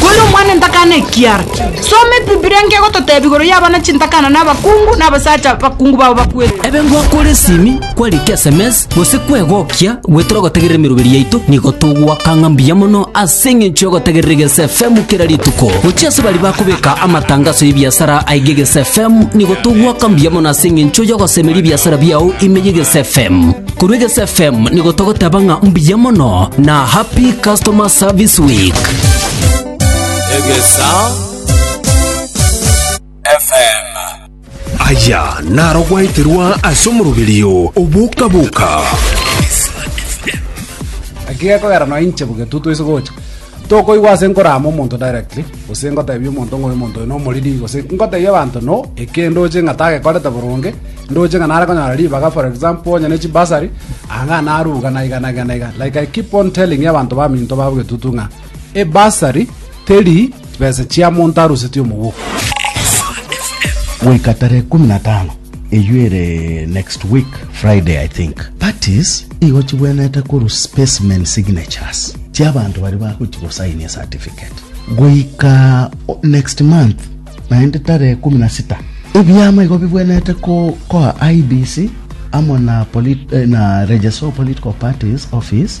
Kore omwana entakana ekiara. Soma ebibilia nkegototebi igoro y'abana chintakana na abakungu na abasacha bakungu babo bakwete. Ebe ngwakore esimi, kwarika esemesi, gose kwegokia goetera ogotegerera emeroberi yaito, nigo togoaka ng'a mbuya mono ase eng'encho y'ogotegerera Egeesa FM kera rituko. Gochia ase baria bakobeka amatangaso y'ebiasara aige Egeesa FM, nigo togoaka mbuya mono ase eng'encho y'ogosemeria ebiasara biao ime y'Egeesa FM. Korwa Egesu FM nigo togoteba ng'a mbuya mono na happy customer service week. Egesa FM. Aya naro gwaeterwa ase omoroberio oboka-boka. Gaki gekogera nonya inche bogetutu ase gocha. Tokoigwa ase nkoraama omonto directly, gose ngoteebia omonto ng'a omonto oyo nomoriri, gose ngoteebia abanto no eke ndoche ng'a tagekorete boronge, ndoche ng'a nare konyora ribaga for example onye ne chibursary, aa ng'a naruga naiga naiga naiga. Like I keep on telling abanto baminto ba Obogetutu ng'a ebursary teri chibesa chia monto arusetie omogoko. Goika tarehe kumi na tano Eyio ere next week Friday I think. Parties igo chibwenerete korwa specimen signatures chia abanto baria bagochia gosainia certificate. Goika next month naende tarehe ikomi na sita ebiama igo bibwenerete koa IEBC amo na eh, na Register of Political Parties Office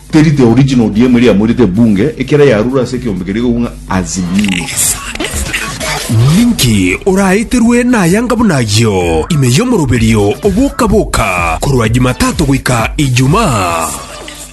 Teri the original ODM eria yamoirete ebunge ekero yarure ase ekeombe keria igokwa ng'a Azimio. Ninki oraeterwe nayanga buna ayio ime y'omoroberio oboka boka korwa Jumatato goika Ijumaa?